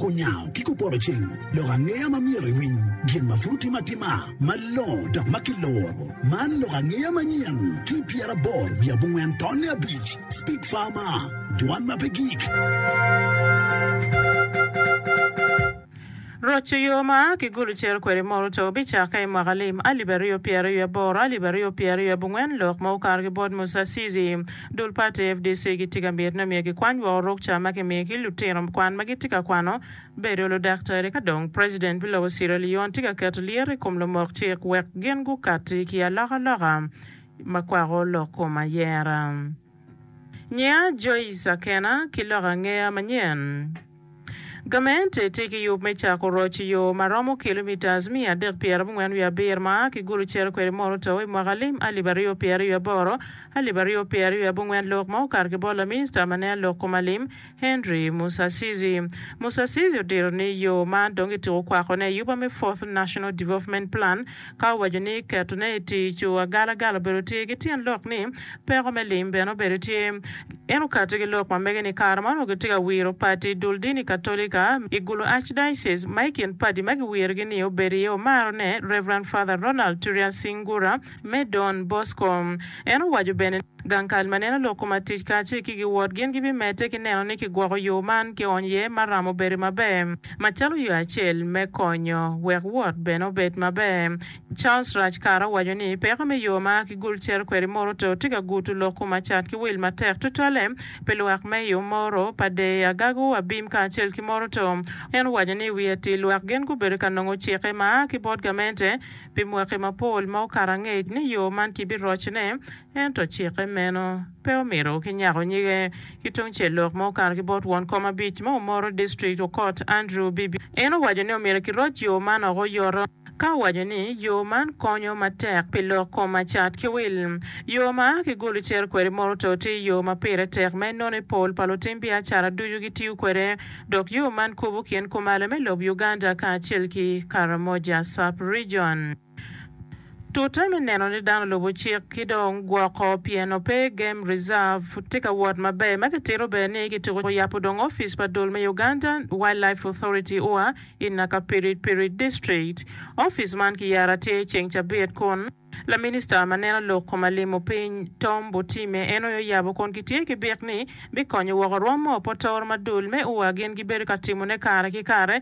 Onyango ki kupoto cing lok angeya ma myero iwiny gin ma pud otime atima malongo dok ma kiloro. Man lok angeya manyen ki pyeraboro wiye abongwen tonne abic. Speak Farmer, Dwan ma pe gik. Roco yo ma kigulu ciro kwede mot oto bicakke i mwaka lim alip aryo pyeraryo aboro, alip aryo pyeraryo abongwen lok ma okato ki bot Musasizi. Dul pati fdc gitye ka miti ni omyero gikwany woko rukca ma kimiyo ki lutino kwan ma gitye ka kwano bedo ludaktari ka dong President pi lobo Sierra Leone tye ka keto lyeto i kom lumok cik wek gin gukatti ki alokaloka ma kwako lok kom ayera. Nyiya Joyce Akena ki lok angeya manyen. Gament tye ki yub me cako roc i yo ma romo kilomitas miya adek pyera abongwen wiye abir ma a ki Gulu cito kwede mono Otawa i mwaka lim alip aryo pyeraryo aboro, alip aryo pyeraryo abongwen lok ma okato ki bot laminista ma nene lok kom alim, Henry Musasizi. Musasizi odiro ni yo man dong gitiko kwakone i yuba me Fourth National Development Plan, Ka waco ni ketone i tic, agalagala obedo tye ki tyen lok ni peko me lim bene obedo tye. En okatti ki lok ma mege ni kare ma onongo gitye ka wiro pati dul dini Katolika i Gulu Archdiocese, ma i kin padi ma giwirogi ni obedo iye omarone, Rev. Father Ronald Turian Singura me Don Bosco. En owaco bene ni. Gang kal ma neno lok koma tic kacel ki giwot gin gibimedde ki neno ni kigwoko yo man ki ony iye ma ramo bedo maber macalo yo acel me konyo wek wot bene obed maber. Charles Raj Kar owaco ni peko me yo ma ki gul cere kwede Moroto tye ka gutu lok koma cat ki wil matek tutwalle pi lwak me i Omoro, Padee, Agago, Abim kacel ki Moroto. En owaco ni iwi atir lwak gin gubedo ka nongo cikke ma aa ki bot gamente pi mwaki mapol ma okato angec ni yo man ki biroc ne Ento cikke meno pe omito kinyako nyige. Ki tungcel lok ma okato ki bot won kom abic ma omoro district okot Andrew Bibi, en owaco ni omyero kiroc yo man oko oyoto, ka owaco ni yo man konyo matek pi lok kom ma cat ki wil. Yo ma a ki Gulu cito kwede Moroto tye yo ma pire tek ma enone pol pa lutim biacara ducu gitiyo kwede, dok yo man kubo kin kumalo me lob Uganda kacel ki Karamoja Sub-Region. Tute me neno ni dano lubo cik ki dong gwoko pien ope game reserve pud tye ka wot maber ma kitito bene ni kituko yabo dong ofice pa dul me Uganda Wildlife Authority, ua, i Nakapirit Pirit District. Ofice man kiyaro atir i ceng cabit kun Laminista ma neno lok koma limo piny Tom Botime en aye oyabo kun kitye ki bik ni bikonyo woko rwom ma opotoro ma dul me ua gin gibedo ka timone kare ki kare.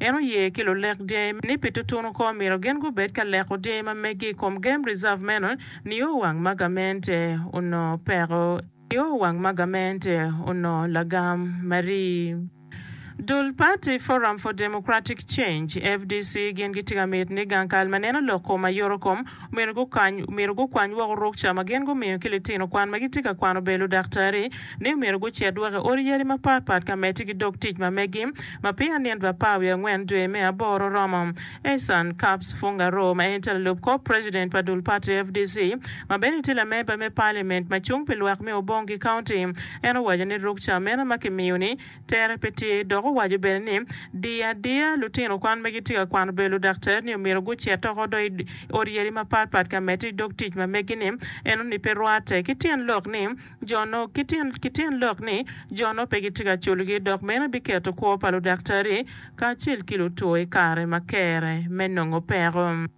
En oye ki lulek dyangi ni pi tutunu kong omyero gin gubed ka leko dyangi ma megi i kom game reserve meno nio wang ma gamente onongo peko nio wang ma gamente onongo lagam marii. Dul pati Forum for Democratic Change, fdc, gin gitye ka miti ni gang kal ma neno lok kom ayoto kom Omyero gukwany woko ruk ca ma gin gumiyo ki litino kwan ma gitye ka kwano bedo ludaktari ni omyero gucit woko i odi yadi mapat pat ka medde ki dog tic ma megi ma peya nit pa apar wiye angwen dwe me aboro oromo. Ehsan Kaps Fungaroo ma en tye lalub kor president pa dul pati fdc ma bene tye lamemba me parliament ma cung pi lwak me Obong ki county en owaco ni ruk ca meno ma kimiyo ni Tere pe tye, dok owaco bene ni, Diyo adiya, lutino kwan ma gitye ka kwano bedo ludaktari-ni omyero gucit oko do i odyeri mapat pat ka medde i dog tic ma megi-ni. Enoni pe rwatte, ki tyen lok ni, jo no, ki tyen, ki tyen lok ni, jo no pe gitye ka culogi, dok meno biketo kwo pa ludaktari kacel ki lutwo i kare ma kere me nongo peko.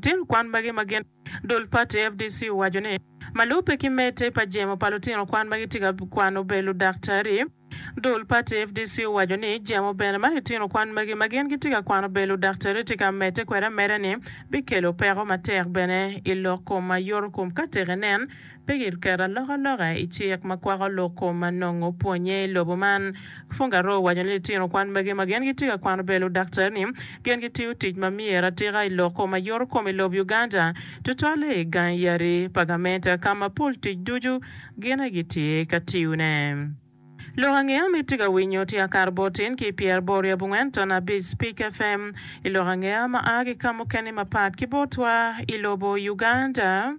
Tyen kwan magi ma gin. Dul pati FDC owaco ni, ma lubbe ki medde pa jemo pa lutino kwan ma gitye ka kwano obedo ludaktari. Dul pati FDC owaco ni, jemo bene ma litino kwan magi ma gin gitye ka kwano obedo ludaktari tye ka medde kwede ameda ni bikelo peko matek bene i lok kom ma yoto kom ka tek inen. Pe giketo alokaloka i cik ma kwako loko ma nongo pwonnye i lobo man. Fungaro owaco ni litino kwan magi ma gin gitye ka kwano bedo ludaktari ni gin gitiyo tic ma myero atika i loko ma yoto kom i lob Uganda, tutwalle i gangi yadi pa gamente ka ma pol tic ducu gin aye gitye ka tiyone. Lok ange ma itye ka winyo tye Akar bot tin ki pyer bor i abongwen ton abic Spik FM i lok ange ma a ki ka mukene mapat ki botwa i lobo Uganda.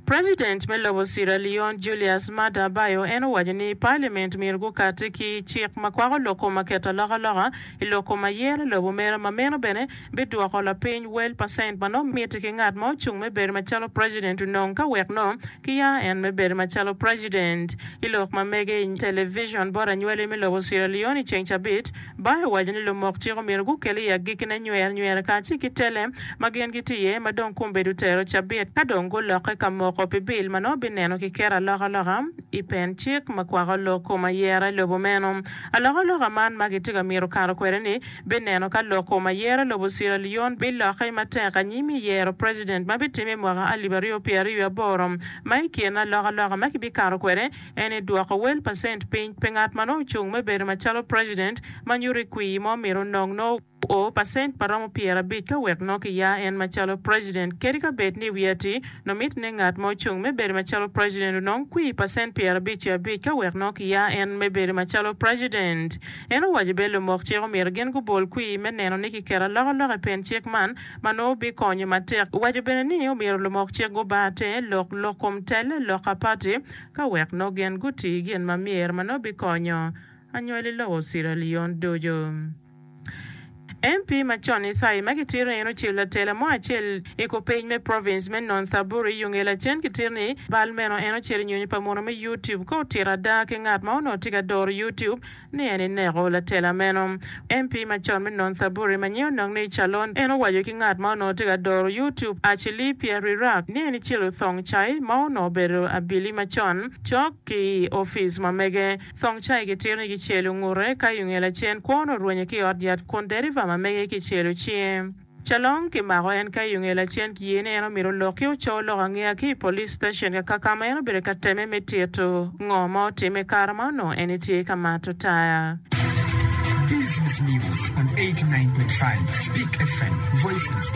President me lobo Sierra Leone Julius Maada Bio en owaco ni Parliament myero gukati ki cik ma kwako lok kom ma keto alokaloka i lok kom ayer lobo mere ma meno bene bidwoko lapiny wel pa cent ma nongo mitte ki ngat ma ocung me bedo macalo president onongo ka wek nongo kiya en me bedo macalo president i lok ma mege i television bot anywali me lobo Sierra Leone i ceng cabit. Bae owaco ni lumok cik omyero gukel i agikkine nyer nyer kacel ki tele ma gin gitye iye ma dong kumbe du tero cabit ka dong gulokke ka moko pi bill ma nongo bineno ki keto alokaloka i pen cik ma kwako lok kom ayera i lobo meno. Alokaloka man ma kitye ka mito kato kwede ni bineno ka loko ma yero lobo Sierra Leone bilokke matek anyim i yero president ma bitimme i mwaka alip aryo pyera aryo aboro ma i kin alokaloka ma kibikato kwede en ni dwoko wel pa cent piny pi ngat ma nongo ocung me bedo macalo president ma nyuto i kwii ma omito onong nongo o pa cent ma romo pyera abic ka wek nongo kiya en macalo president kadi ka bed ni wiye atir nongo miti ni ngat ma ocung me bedo macalo president onong kwii pa cent pyera abic ki abic ka wek nongo kiya en me bedo macalo president. En owaco bene lumok cik omyero gin gubol kwir me neno ni kiketo alokaloka i pen cik man ma nongo bikonyo matek. Owaco bene ni omyero lumok cik guba te lok lok kom tel lok a pati ka wek nongo gin guti gin ma myero ma nongo bikonyo anywali lobo Sierra Leone ducu. MP macon Ithai ma kitito ni en ocel latela mo acel i kupiny me province me Nonthaburi i Yungee lacen kitito ni bal meno en ocel i nyonyo pa munu me YouTube ka otito ada ki ngat ma onongo tye ka doro YouTube ni en eneko latela meno. MP macon me Nonthaburi ma nyinge onongo ni Calon en owaco ki ngat ma onongo tye ka doro YouTube Achilli Pierrirak ni en ecelo thong cai ma onongo obedo abili macon cok ki i ofice ma mege Thong cai ki tiro ni ki celo ngute ka i onge lacen kwon orwenye ki ot yat kun deriva ma mege ki celo cinge. Calong ki mako en ka i onge lacen ki ye ni en omito lok ki oco lok angeya ki i police station kaka kama en obedo ka teme me tito ngo ma otime kare ma onongo en etye ka mato taya. Business News on 89.5 Speak FM, Voices.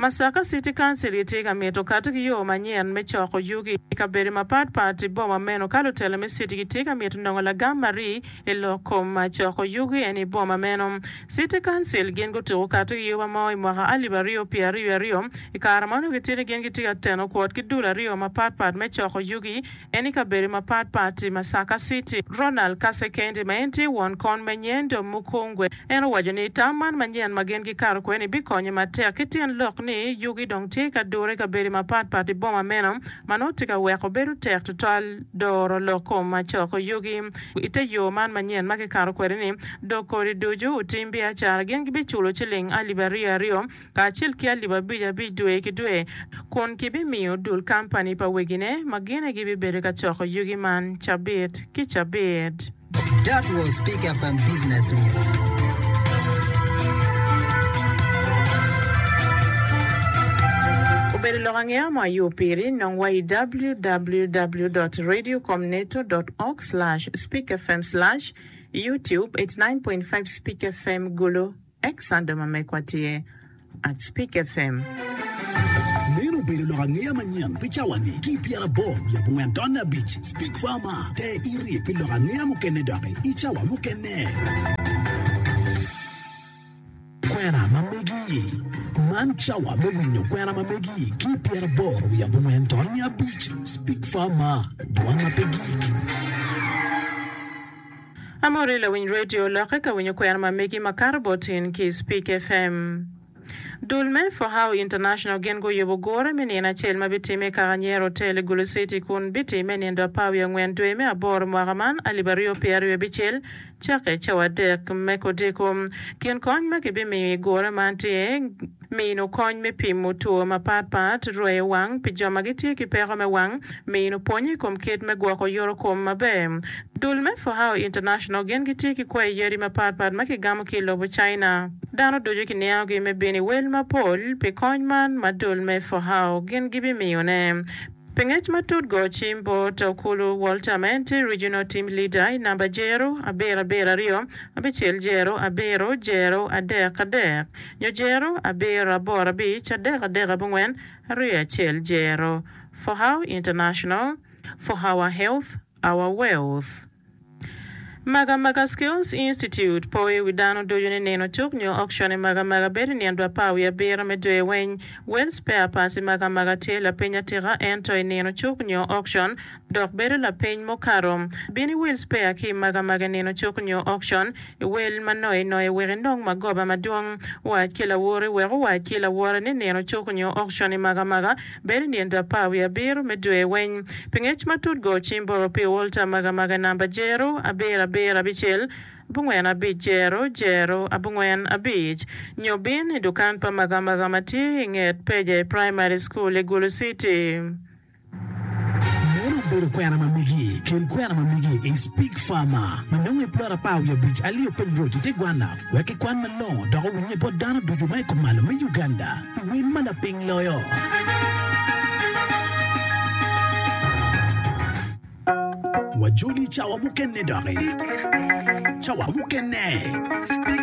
Masaka City Council gitye ka mito kati ki yo manyen me coko yugi i kabedo mapat pat i boma meno ka lutela me city gitye ka mito nongo lagam ma rii i lok kom coko yugi eni i boma meno. City Council gin gutuko kati ki yoba mo i mwaka alip aryo pye aryo aryo, i kare ma onongo gitye ni gin gitye ka teno kwot ki dul aryo mapat pat me coko yugi, en i kabedo mapat pat i Masaka City. Ronald Kasekende ma en tye won kon me Nyendo Mukungwe en owaco ni tam man manyen ma gin gikato kwede-ni bikonyo matek ki tyen lok ni yugi dong tye ka dure i kabedo mapat pat i boma meno ma nongo tye ka weko bedo tek tutwal doro lok kom ma coko yugi i te yo man manyen ma kikato kwede-ni dok kodi ducu otim biacara gin gibiculo ciling alip aryo aryo kacel ki alip abic abic dwe ki dwe, kun kibimiyo dul kampani pa wegine ma gine gibibedo ka coko yugi man cabit ki cabit. That was Pick FM Business News. Obedo lok angeya mo ayo piri, nong wa i www dot radio com neto dot org slash speak fm slash youtube eighty nine point five speak fm gulu. Ex Sando ma megwa tye at Spik FM. Meno obedo lok angeya manyen pi cawa-ni ki i pyerabor wiye abongwen taun me abic. Spik Farmer, te iryek pi lok angeya mukene doki i cawa mukene. Kwena ma megi. Man cawa me winyo kwena ma megi ki i pyerabor wiye abongwen taun me abic. Spik Farmer, dwan ma pe gik. Amori lawiny radio lokke ka winyo kwena ma megi makato bot in ki Speak FM. Dul me For How International gin guyubo gure me nino acel ma bitimme i kaka Nyero Hotel i Gulu City kun bitimme i nindo apar wiye angwen dwe me aboro mwaka man alip aryo pyera aryo abicel cakke cawa adek me kodiko. Kin kony ma kibimiyo i gure man tye. mino kony me pimo two mapatpat, rweyo wang pi jo ma gitye ki peko me wang, mino pwony i kom kit me gwoko yorokom maber. Dul me Fohao International gin gitye ki kwayi yadi mapatpat ma kigamo ki i lobo China. Dano ducu kiniangogi me bino i wel mapol pi kony man ma dul me Fohao gin gibimiyone. Pi ngec matut go cim bot Okulu Walter ma en tye Regional Team Leader i namba jero abiro abiro aryo abicel jero abiro jero adek adek. Nyo jero, abiro, aboro, abic, adek, adek, abongwen, aryo, acel, jero, For how international For our health, our wealth. Maga Maga Skills Institute poyo i wi dano ducu ni nino cuk nyo auction i Maga Maga bedo i nino dwe apar wiye abiro me dwe weny. Well spare parts i Maga Maga tye lapiny atika ento i nino cuk nyo auction dok bedo lapeny mukato. Bin iwil spea ki i magamaga nino cuk nyo okcon, iwel ma noye noye wek inong magoba madwong. Wac ki lawori wek owac ki lawore ni nino cuk nyo okcon i magamaga bedo i nino apar wiye abiro me dwe weng. Pi ngec matut go cim boro pi olta magamaga namba jero abiro abiro abicel abongwen abic jero jero abongwen abic nyo bin i dukan pa magamaga ma tye i nget peja i Primary School i Gulu City. Meno obedo kwena ma migi kin kwena ma migi i Speke Farmer ma nongo i plot apar wiye abic alio piny road i te gwanna wek ki kwan malongo dok owinye bot dano ducu ma i kumalo me Uganda i wel ma laping loyo. Wajoli cawa mukene doki. Cawa mukene.